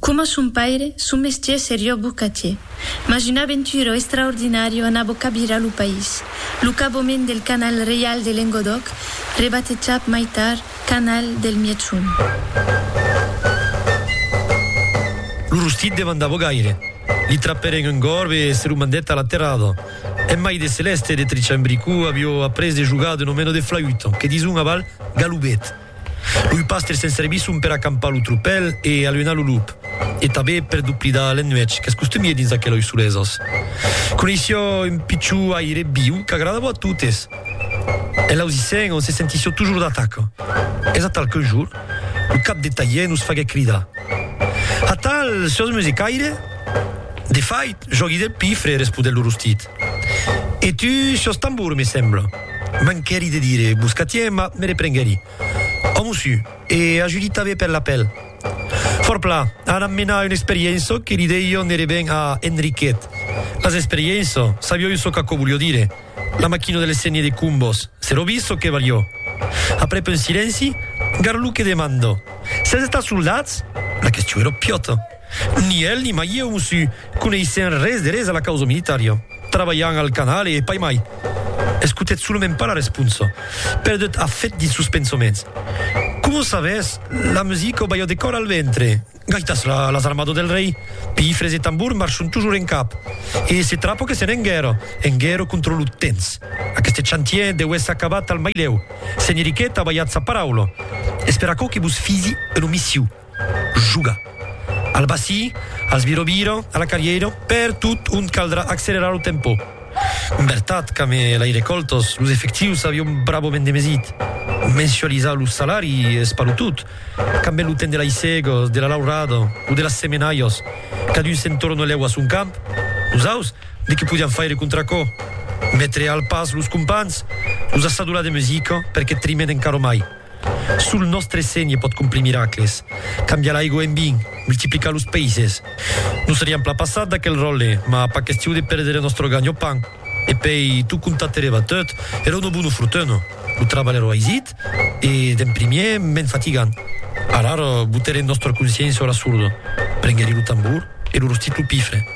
Coma son paire, son mestier serió bocatier, mas una aventura extraordinària anava cabirar lo país, lo cabament del Canal Reial de Lengodòc, rebatejat mai tard Canal del Mièg-Sond. Lo rostit demandava gaire. Li trapèren un gorb e se lo mandèt a la terrada. En mai de Celèste e de Trichant Bricou avió après de jogar de nomeno de flauta, que dison aval galubet. Loi pastre se'n servisson per acampar lo tropèl e aluenar lo lop, e tabé per doplidar l'ennuech qu'es costumie dins aqueloi solesas. Coneissió un pichó aire viu qu'agradavo a totes. En l'ausissent on se sentissió tojor d'ataca. Es atal qu'un jor, lo cap de talhier nos faguèt cridar, Atal, siós musicaire? De fait, jògui del pifre, responèt lo rostit. E tu sos tambur, me sembla. Manquèri de dire buscatier, mas me reprenguèri. Òmu su, e ajuditabe per la pel. Forpla, anam menar un experienço que li dei jo n'ère ben a Enriquet. Mas experienço, sabió jo çò qu'aquò volió dire? La maquina de l'escennier de Cumbos, se lo vis çò que valió? Aprèp un silenci, Garluque demandó, Sètz estats soldats? La question era piòta. Ni el ni mai ieu, mossu, coneissèm res de res a la causa militària. Trabalham al canal e pas mai. Escotèt solament pas la responsa. Perdut a fèt dins sos pensaments. Coma s'avès la musica balhò de còr al ventre. Gaitas la, las armadas del rei. Pifres e tambors marchon tojor en cap. E se trapò que sèn en guèrra, en guèrra contra lo temps. Aqueste chantier deu èsser acabat al mai lèu. Senheriquet a balhat sa paraula. Esperar aquò que vos fisi un omissiu. Joga. Al bací, als viro-viro, a la carrièira, per tot ont caldrà accelerar lo tempò. En vertat, qu'amb Laire Coltos, los efectius avion bravament demesit. Mensualizar lo salari es pas lo tot. Qu'ambe lo temps de l'aissegos, de la laurada o de las semenaias, cadun se'n torne lèu a son camp, nosaus, de que podiam faire contra aquò? Metre al pas los companhs, los assadolar de musica, perque trimen encara mai. Sul nòstre sénhe pòt complir miracles, cambiar l'aigo en vin, multiplicar los peisses. Nos seriam plan passat d'aquel ròtle, mas pas question de perdre nòstre ganho-pan. E pei, tot comptat per eva tot, era una bona fortuna, lo trabalh era aisit e, d'en primièr, mens fatigant. Alara, boterem nòstra consciéncia a la sorda, prengueri lo tambor e lo rostit lo pifre.